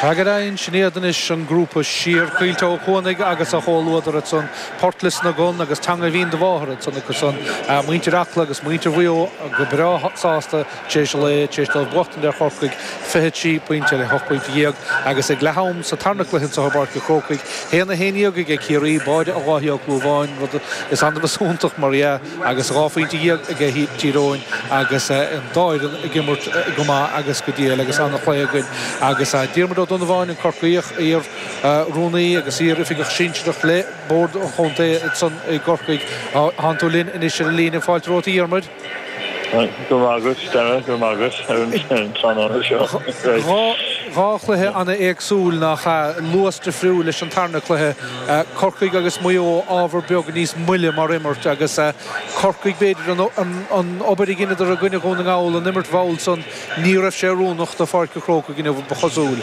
Tagraíonn sin iad anois an grúpa Siar, Caoilte Ó Cuanaigh agus a chomhluadar ansan Port Lios na gCon agus Teanga Bhinn do Mháthar ansan acu san muintir Acla agus muintir Mhaigh Eo go breá sásta tar éis lae tar éis dóibh buachtaint ar Chorcaigh fiche trí pointe ar hocht bpointe dhéag agus ag leath am sa tarna cluiche anseo i bPáirc a Chrócaigh haon a haon dhéag aige Ciarraí báide Dháithí Ó Clúmháin rud is annamh is iontach mar dhea. agus dhá phointe dhéag aige Tír Eoghain agus an dá fhoireann ag imirt go maith agus go diail agus an-chluiche againn agus Diarmuid Ó Donnabháin, an Corcaíoch, iar rúnaí agus iar oifigeach sinsearach le Bord an Chontae san i gCorcaigh. Thánn tú linn anois ar an líne, fáilte romhat a Dhiarmuid. Go raibh maith agat Dara, go raibh maith agat ar an tráthnóna seo. Dhá chluiche an-éagsúil nach ea? Luas difriúil leis an tarna cluiche. Corcaigh agus Maigh Eo ábhar beag níos moille mar imirt agus Corcaigh, b'fhéidir, an obair a dheineadar i gcoinne Dhún na nGall, an imirt mhall san, ní raibh sé oiriúnach do Pháirc an Chrócaigh inniu, ba chosúil.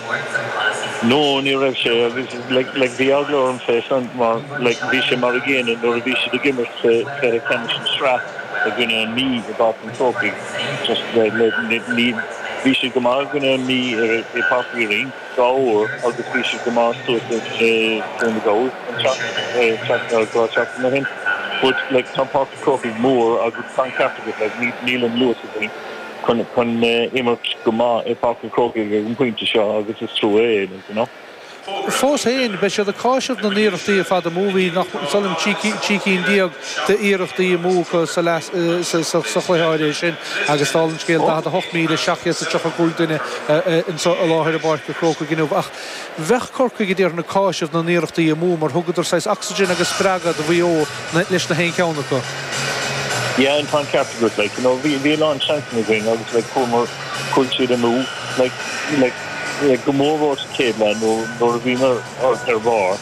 No, ní raibh sé agus like bhí eagla orm fé san mar like bhí sé mar an gcéanna nuair a bhí siad ag imirt sa chluiche ceannais na sraith i gcoinne an Mí i bPáirc an Chrócaigh just like bhí siad go maith i gcoinne an Mí i Páirc Uí Rinn. dhá uair agus bhí siad go maith suas i Dún na nGall an tseachtain, dhá seachtain ó shin. But like tá an Páirc Crócaigh mór agus tá an ceart agat, like ní, níl an luas againn chun, chun imirt go maith i bPáirc an Chrócaigh ag an pointe seo agus is trua é, like, you know. Fós féin, beidh siad ag cáiseamh na n-iarrachtaí ar fad amú, bhí nach, sílim trí cinn déag d'iarrachtaí amú acu sa chluiche áirithe sin agus, dála an scéil, 48,735 duine anseo i láthair i bPáirc a' Chrócaigh inniu. Ach bheadh Corcaigh, a déarfainn, ag cáiseamh na n-iarrachtaí amú mar thugadar saghas ocsaigin agus spreagadh do Mhaigh Eo leis na haon cheann acu. Yeah, tá an ceart agat, like, you know, bhí a lán seansanna againn agus, like, chuamar, chuaigh siad amú, like, like, go mór mhór sa chéad leath nuair a bhíomar ar bharr.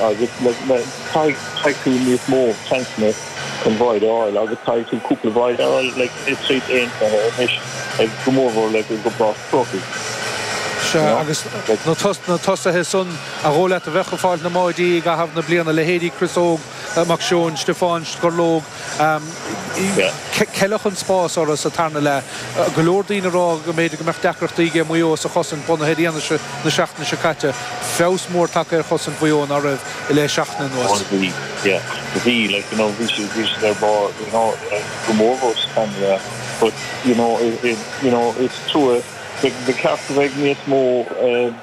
Agus caithfidh tú níos mó seansanna chun báide a fháil, agus caithfidh tú cúpla báide a fháil le troid aontaithe anois, go mórmhór like i bPáirc an Chrócaigh. Sea, agus na tosaithe san ba dhóigh leat a bheadh ag fáilt na mbáidí i gcaitheamh na bliana, leithéidí Chris Óg Mac Seoin, Stiofán Scorlóg, Ceileadh an spás orthu sa tarna leath. Go leor daoine ag rá go mb'fhéidir go mbeadh deacrachtaí aige Maigh Eo sa chosaint bunaithe ar fhianaise na seachtaine seo caite. Feabhas mór tagtha ar chosaint Mhaigh Eo ná raibh i leith seachtaine anuas. Bhí, like, you know, bhí siad, bhí siad ar barr, you know, go mórmhór sa tarna leath but, you know, you know, is trua, like, ba cheart go mbeidh níos mó, eh,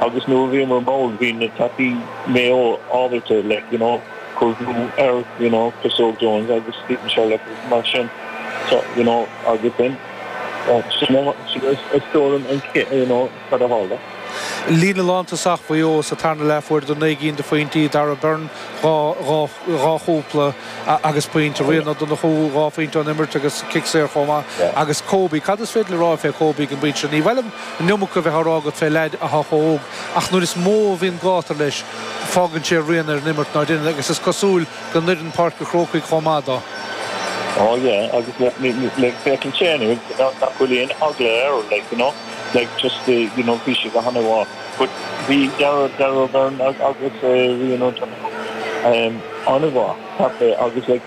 agus nuair a bhíomar mall bhí na tacaí Mayo ábalta like you know cur brú ar you know Chris Óg Jones agus Steven Sherlock agus mar sin so you know agus then sin a sin a a stiúrann an cé you know cad a tharla. Líne lántosach Mhaigh Eo sa tarna leath fuaireadar naoi gcinn de phointí Darragh Beirne dhá dhá dhá chúpla agus pointe Ryan O'Donoghue dhá phointe ón imirt agus cic saor chomh maith agus Kobe cad is féidir le rá fé Kobe ag an bpointe seo? Ní mhaith liom An iomarca a bheith á rá agat fé leaid athá chomh hóg, ach nuair is mó a bhíonn gátar leis, fágann sé rian ar an imirt ná deineann, agus is cosúil go n-oireann Páirc a' Chrócaigh chomh maith do. Ó, yeah, agus like, féachann sé inniu nach bhfuil aon eagla air, like, you know, like, just the, you know, bhí sé go han-mhaith, but bhí Darragh, Darragh O'Beirne agus Ryan O'Donoghue, um, an-mhaith, ceapaim, agus like,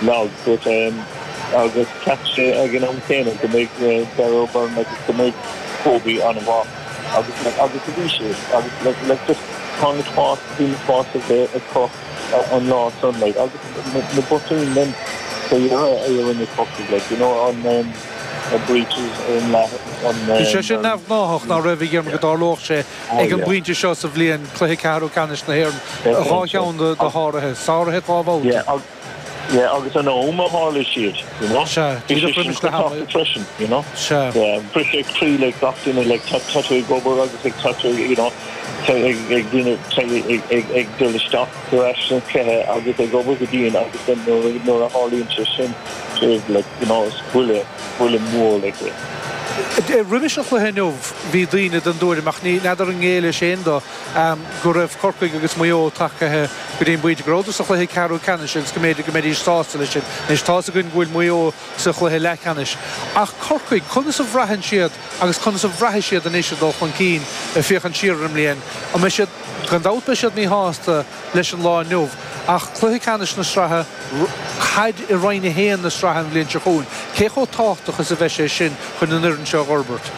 Like, dúirt sé, agus cheap sé ag an am céanna go mbeidh Darragh O'Beirne agus go mbeidh Kobe an-mhaith agus like agus a bhí siad agus like like just tá na spás bhí na spás ag acu an lá san like agus na botúin linn sa dheireadh a rinne Corcaigh like you know an um, a breaches in la on Bhí sé sin um, neamhghnáthach ná raibh a dhéanamh go dtarlódh sé Ag an bpointe seo sa bhliain, cluiche ceathrú ceannais na hÉireann, dhá cheann de sháruithe, sáruithe dhá bhabhta. Yeah, agus an am a tharla siad, you know? Sea, díreach roimis na hAonaigh. freisin, you know? Sea. Yeah, briseadh croí le gach duine, like tá tú ag obair agus ag tá tú, you know, ag duine ag dul isteach ar ais sa chluiche agus ag obair go dian agus nuair a tharlaíonn sé sin, you know, is buille. buille mór ag rith. Roimis an chluiche inniu bhí daoine den dtuairim, ach ní fheadar an ngéillfeása dó, go raibh Corcaigh agus Maigh Eo tagtha go dtí an bpointe go rabhadar sa chluiche ceathrú ceannais agus go mb'fhéidir go mbeidís sásta leis sin. Anois tá's againn go bhfuil Maigh Eo sa chluiche leathcheannais, ach Corcaigh, conas a bhraitheann siad agus conas a bhraithfidh siad anois ag dul chun cinn féachaint siar ar an mbliain, an mbeidh siad, gan dabht beidh siad míshásta, leis an lá inniu ach cluiche ceannais na sraithe caid i Roinn 1 na sraithe an bhliain seo chugainn. Cé chomh tábhachtach is a bheidh sé sin chun an fhoireann seo a dh'fhorbairt?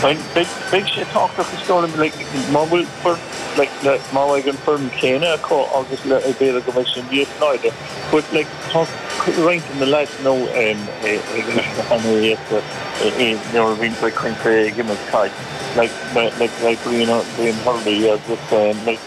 Beidh sé tábhachtach is dóigh liom. Má bhfuil foireann, like, má bheidh an foireann chéanna acu agus like, b'fhéidir go mbeidh sé níos láidre but, like, tá roinnt de na lads now um ag imirt go han-éasca i, nuair a bhíonn sé, like, coincheap ag imirt caid, like, like, like, like, Brian, Brian Hurley agus, like.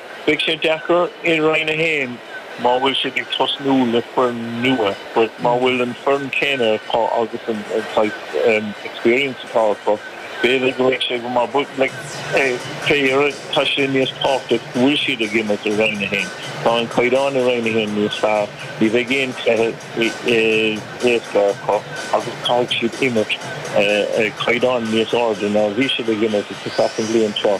Beidh sé deacair i Roinn 1 má bhfuil siad ag tosnú le foireann nua but má bhfuil an foireann céanna acu agus an saghas experience atá acu b'fhéidir go mbeidh sé go maith but like fé dheireadh tá sé níos tábhachtaí go bhfuil siad ag imirt i Roinn 1. Tá an caighdeán i Roinn 1 níos fearr, ní bheidh aon cluiche éasca acu agus caithfidh siad imirt ag caighdeán níos airde ná a bhí siad ag imirt i Csac an bhliain seo.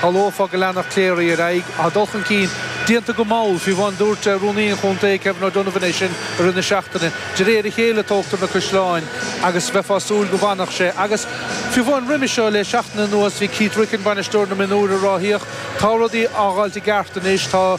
Shamhlófá go leanfadh Cleary ar aghaidh, Tá dul chun cinn déanta go mall faoi bhun Dúirt Rúnaí an Chontae, Kevin O'Donovan é sin i rith na seachtaine, De réir a chéile a tógtar na caisleáin agus bheifeá ag súil go bhfanfadh sé agus faoi bhun Roimhe seo le seachtain anuas bhí Keith Ricken, bainisteoir na mionúr, a ráthaíodh, tá rudaí á fháilt i gceart anois, tá.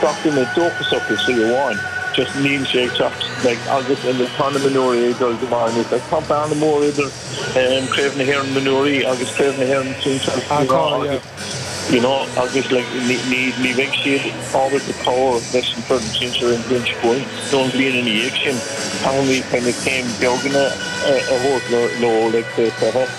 gach duine dóchasach i slí amháin just níl sé ag teacht like agus and tá na mionúirí ag dul go maith and it's like tá bearna mór idir um craobh na hÉireann mionúirí agus craobh na hÉireann sinsear Ah you tá know yeah agus you know agus like ní ní ní bheidh siad ábalta cabhair leis an foireann sinsear an bhliain seo chugainn nó an bhliain ina dhiaidh sin caithfimid kind of céim beaganna a thabhairt leo leo like sa, sa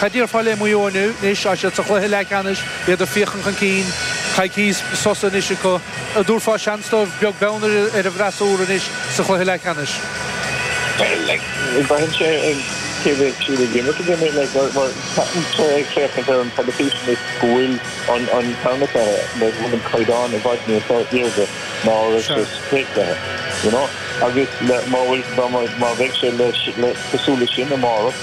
Cad déarfá le Maigh Eo inniu, anois, tá siad sa chluiche leathcheannais, iad ag féachaint chun cinn, coicís sosa anois acu, an dtabharfá seans dóibh, beag beann ar an bhfreasúra anois sa chluiche leathcheannais? Bhuel, like, braitheann sé ar cé bheidh siad ag imirt ina gcoinne, like, mar, mar, táimse ag féachaint ar an teilifís anois go bhfuil an, an tarna cluiche, like, bhfuil an caighdeán i bhfad níos airde ná a raibh sé sa chéad chluiche, you know? Agus le, má bhfuil, dá má, má bheidh sé le, le, cosúil leis sin amárach,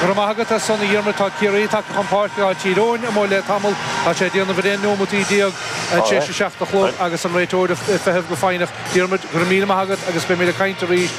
Go raibh maith agat as san a Dhiarmuid tá Ciarraí tagtha chun páirce tá Tír Eoghain amuigh le tamall. Tá sé ag déanamh bhréa neomataí déag tar éis a seacht a chlog agus an réiteoir amuigh ag feitheamh go foighneach. Diarmuid, go raibh míle maith agat agus beimid ag caint arís.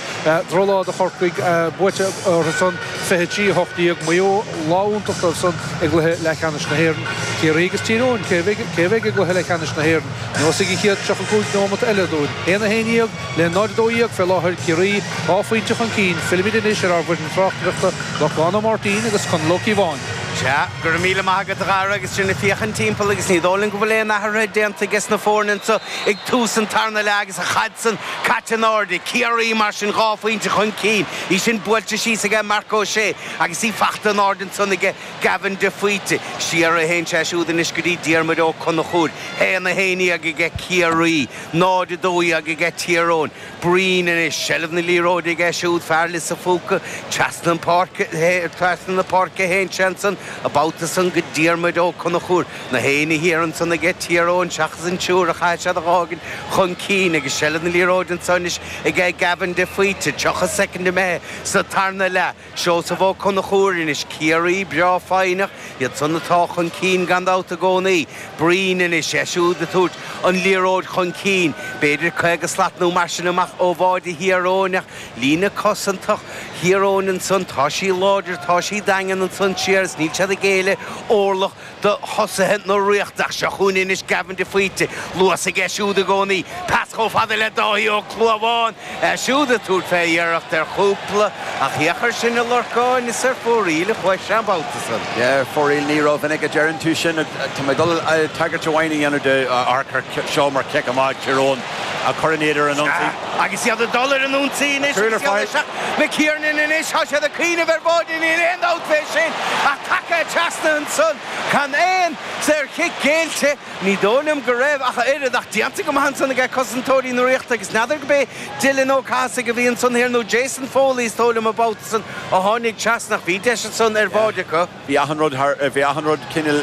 Drochlá do Chorcaigh buaite orthu san, 23, 18. Maigh Eo, lá iontach dóibh san i gcluiche leathcheannais na hÉireann. Ciarraí agus Tír Eoghain, cé a bheidh i gcluiche leathcheannais na hÉireann? Neosfaidh an chéad 35 neomata eile dúinn. 1 a 11? Le 0-12 fé láthair, Ciarraí dhá phointe chun cinn, fillimid anois ar ár bhfoireann tráchtaireachta, Lorcán Ó Máirtín agus Conall Ó Cíobháin. Sea, go raibh míle maith agat, a Dhara, agus sinn ag féachaint timpeall agus ní dóigh linn go bhfuil aon athruithe déanta ages na foirne anseo ag tús an tarna leath agus an chaid san caite in airde. Ciarraí, mar sin, dhá phointe chun cinn, í sin buailte síos aige Marc Ó Sé agus í fachta in airde ansan aige Gavin de Faoite. Siar a théann sé siúd anois go dtí Diarmuid Ó Conchúir. 1-11 aige Ciarraí. 0, 12 aige Tír Eoghain. Breen anois, seilbh na liathróide aige siúd, fear Lios an Phúca, trasna an pháirce, trasna na páirce a théann sé ansan, an babhta san go Diarmaid Ó Conchúir. Nach éinne thiar ansan aige Tír Eoghain seachas an triúr a chaithfidh siad a dh'fhágaint chun cinn agus seilbh na liathróide ansan anois aige Gavin de Faoite, 30 soicind imithe sa tarna leath. Seosamh Ó Conchúir anois, Ciarraí, breá foighneach, iad san atá chun cinn gan dabht i gcónaí. Breen anois, é siúd ag tabhairt an liathróid chun cinn, b'fhéidir caoga slat nó mar sin amach ó bháide Thír Eoghain ach líne cosantach Thír Eoghain ansan, tá sí láidir, tá sí daingean ansan siar is níl siad ag géilleadh orlach. do thosaithe na Ríochta ach seo chugainn anois Gavin de Faoite, luas aige siúd i gcónaí, pas chomh fada le Dáithí Ó Clúmháin, é siúd ag tabhairt fé iarracht ar chúpla, ach thiocfadh air sin a lorcáil, is ar fóraoil a chuaigh sé an babhta san. Yeah, ar fóraoil, ní rómhinic a deireann tú sin, tá mé ag dul tagairt amháin a dhéanamh dó, amharc air seo mar cic amach Tír Eoghain a chuireann iad ar an ionsaí. Agus iad ag dul ar an ionsaí anois, isteach le McKernan anois, tá siad ag cuimhneamh ar bháide, níl aon dabht fé sin, ach tagtha trasna ansan, gan aon saorchic géillte, ní dóigh liom go raibh ach oiread, ach déanta go maith ansan age cosantóirí na Ríochta, agus n'fheadar go bé Dylan Ó Cathasaigh a bhí ansan thiar nó Jason Foley is dóigh liom an babhta san a tháinig trasna, ach bhí deis ansan ar bháide acu. Bhí achan rud thar, bhí achan rud cineál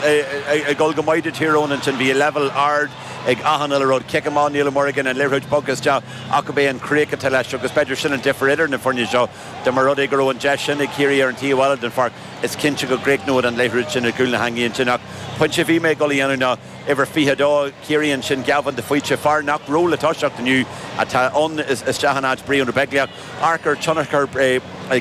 ag dul go maith do Tír Eoghain ansin. Bhí leibhéal ard ag achan uile rud. Cic amach Niall Morgan, an liathróid bog isteach ach ab é an chríoch atá leis agus b'fhéidir sin an difir idir na foirne seo. Dá mba rud é go raibh an deis sin ag Ciarraí ar an taobh eile den pháirc, is cinnte go gcríochnóidh an liathróid sin i gcúl na heangaí ansin ach pointe a bhí mé ag dul a dhéanamh ná uimhir 22 Chiarraí ansin, Gavin de Faoite, fear nach raibh le toiseacht inniu, atá ann isteach in áit Brian Ó Beaglaoich. amharc ar thionchar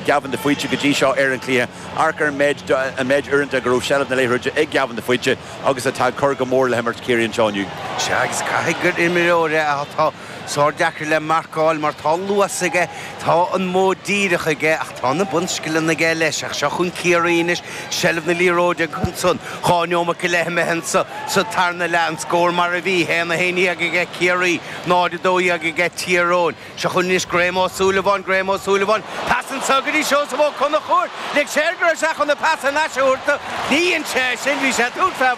Gavin de Faoite go dtí seo ar an gcluiche, amharc ar an méid uaireanta go raibh seilbh na liathróide ag Gavin de Faoite agus atá ag cur go mór le himirt Chiarraí anseo inniu. Sea, agus caithfidh gur imreoir é atá sárdeacair le marcáil mar tá an luas aige, tá an modh díreach aige ach tá na bunscileanna aige leis. Ach seo chugainn Ciarraí anois, seilbh na liathróide acu ansan, dhá neomat go leith imithe sa tarna leath, an scór mar a bhí, 1 a 11 aige Ciarraí, 0 a 12 aige Tír Eoghain. Seo chugainn anois Graham Ó Súilleabháin, Graham Ó Súilleabháin, pas anseo go dtí Seosamh Ó Conchúir, lig sé air go raibh sé chun an pas thar n-ais a thabhairt do, ní dhein sé é sin, bhí sé ag tabhairt fé.